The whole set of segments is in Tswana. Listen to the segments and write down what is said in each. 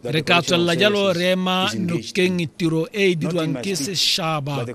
re ka tswelela jalo re ema nokeng tiro e e dirwang ke sešaba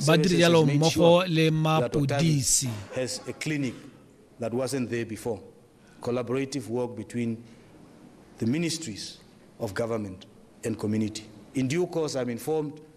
ba dire jalo mmogo le mapodisi that wasn't there before. Collaborative work between the ministries of government and community. In due course, I'm informed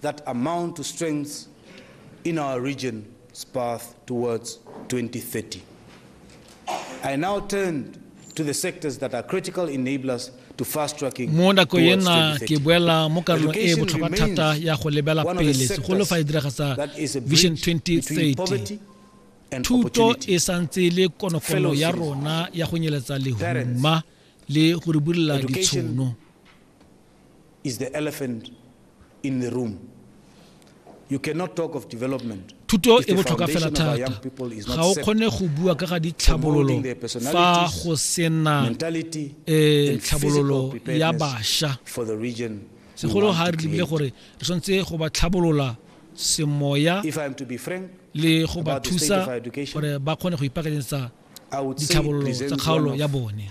that amount to strengths in our region's path towards 2030. I now turn to the sectors that are critical enablers to fast tracking mo nako ye nna ke boela mo karolong e e botlhokwa thata ya go lebela pele segolo fa e diragasa vision 2030 thuto e santse le konokono ya rona ya go nyeletsa lehuma le go re bulela ditshono is the elephant in the room. You cannot talk of development thuto e botlhokwa fela thata ga o kgone go bua ka ga ditlhabololo fa go sena um eh, tlhabololo ya bašwa segolo ga re lebile gore re tshwanetse go ba tlhabolola semoya le go ba thusa gore ba kgone go ipaakanyetsa ditlhabololo tsa kgaolo ya bone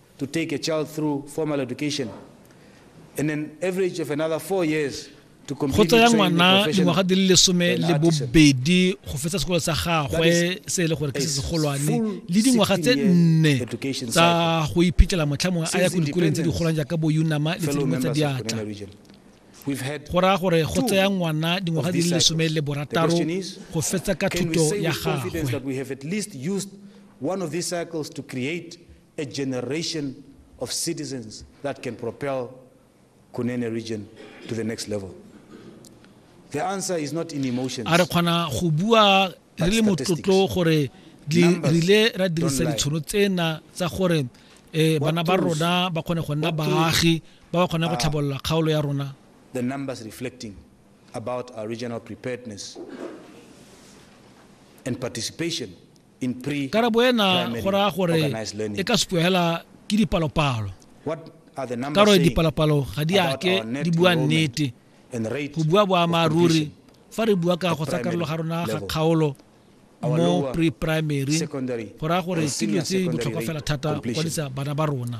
to take a child through formal education and an average of another four years go tsaya ngwana dingwaga di le lesome le bobedi go fetsa sekolo sa gagwe se e le gore ke se segolwane le dingwaga tse nne tsa go iphitlhela motlha mongwe a ya ko dikolong tse di golang jaaka bo unama le tse dingwe tsa diatla go raya gore go tsaya ngwana dingwaga di le lesome le borataro go fetsa ka thuto ya gagwe a generation of citizens that can propel Kunene region to the next level. The answer is not in emotions. A re kgona go bua re le motlotlo gore re rile ra dirisa ditshono tsena tsa gore eh bana ba rona ba kgone go nna baagi ba ba kgone go tlhabolola kgaolo ya rona. The numbers reflecting about our regional preparedness and participation Karabo ena go raya gore e ka supiwa hela ke dipalopalo. Ka gore dipalopalo ga di ake di bua nnete. Go bua boammaaruri fa re bua ka go tsa karolo ga rona ga kgaolo mo pre-primary go raya gore ke dilo tse botlhokwa fela thata go kwadisa bana ba rona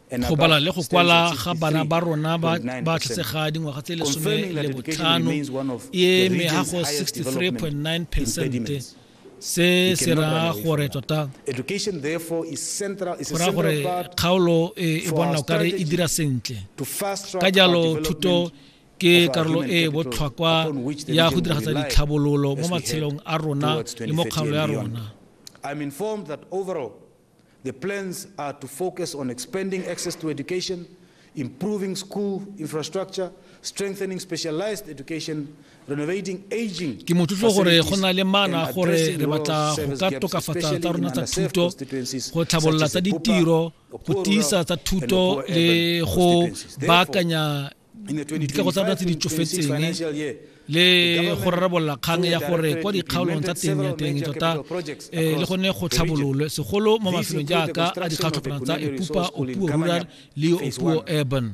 Go bala le go kwala ga bana ba rona ba ba tletsega dingwaga tse lesome le botlhano e eme ga go 63.9 percent se se raya gore tota go raya gore kgaolo e, e bona o kare e dira sentle ka jalo thuto ke karolo e botlhokwa ya go diragatsa ditlhabololo mo matshelong a rona le mo kgaolo ya rona The plans are to focus on expanding access to education, improving school infrastructure, strengthening specialized education, renovating aging. Ke motlotlo gore go na le mana gore re batla go ka tokafatsa tsa rona tsa thuto, go tlhabolola tsa ditiro, go tiisa tsa thuto le go baakanya dikago tsa rona tse di tsofetseng le go rarabolola kgang ya gore kwa dikgaolong tsa teng ya teng tota eh, le gone go tlhabololwe segolo mo mafelong jaaka a dikgatlhopana tsa epupa opuo rural le opuo urban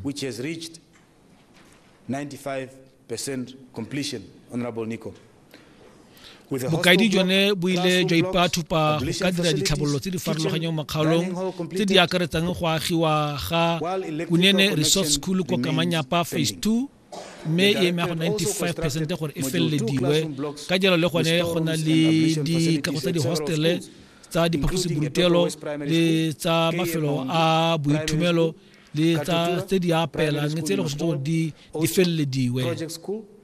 bokaedi jone bo ile jwa ipathupa go ka dira ditlhabololo tse di farologanyang mo kgaolong tse di akaretsang go agiwa ga kunene resort school ko kamanyapa phase two mme e eme go 95 percent gore e felelediwe ka jalo le gone go na le dikago tsa dihostele tsa diphaposiborutelo le tsa mafelo a boithomelo le tsa tse di apelang tse e le go setse gore di felelediwe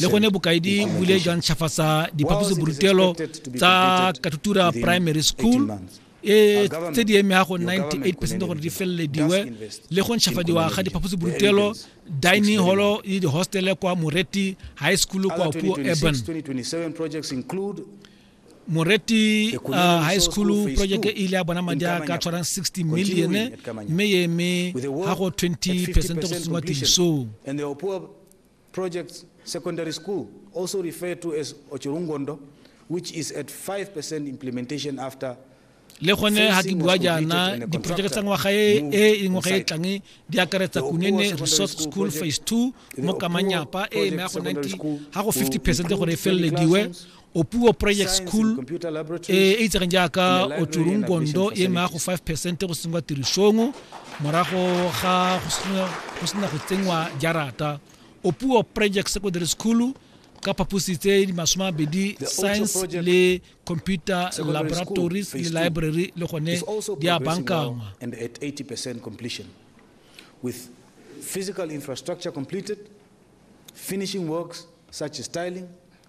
le gone bokaedi bo ile jwa ntšhafatsa diphaposiborutelo tsa katutura primary school e tse di emega go 98 percent gore di felelediwe le go ntšhafadiwa ga diphaposiborutelo dining holo le dihostele kwa moreti high school kwa puo urban moreti uh, high school project e ile ya bona madi a ka tshwarang 60 million mme e eme ga go 20 percent go sengwa tirisong Project Secondary School, also referred to as Ochurungondo, which is at 5% implementation after le gone ga ke bua jaana diporojeke tsa ngwaga e e, e ngwaga e tlang di akaretsa kunene resort school phase two mo kamanyapa e e maya go 90 ga go 50 percent gore e felelediwe opuo project school e e itsegeng jaaka otsurungondo e maya go 5 percent go sengwa tirisong morago ga go sena go tsenngwa jarata opuo project secondary school ka phaposi tse di masome a mabedi science le computer laboratories le library le gone di a bankangwa with physical infrastructure completed finishing works such as tiling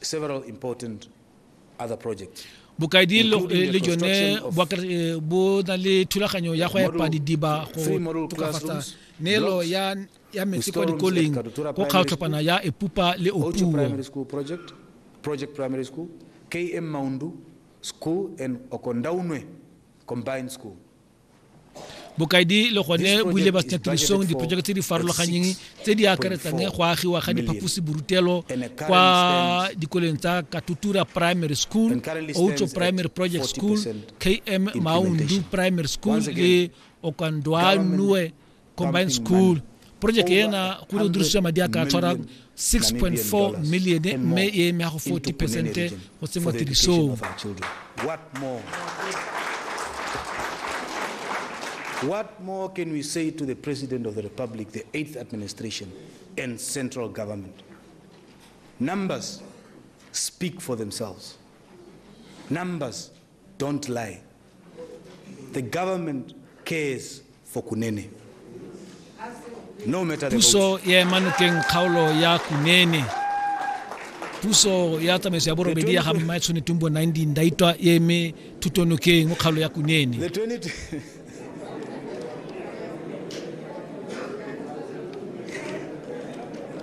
several important other projects bokaedi le jone eh, bo na le thulaganyo ya go epa didiba go tokafatsa neelo ya ya metsi kwa dikoleng go kgaotlhopana ya epupa le opuo primary school project project primary school km maundu school and okondaunwe combined school bokaedi le gone bo ile ba tirisong diporojeke tse di farologanyeng tse di akaretsang go agiwa ga diphaposiborutelo kwa dikoleng tsa katutura primary school outso primary project school km maundu primary school le okandwanue combined school project ena go ne o dirisiwa madi a ka tshwara 6.4 million mme e eme ya go 40 percent go tsenngwa tirisong What more can we say to the President of the Republic, the 8th administration, and central government? Numbers speak for themselves. Numbers Don't lie. The government cares for Kunene. No matter the puso votes. ya ema nokeng kgaolo ya kunene puso ya tsamaiso ya borobedi ya ga mmae tshone tumbo 19 ndaitwa e eme thuto nokeng mo kgaolo ya kunene The 20 Thank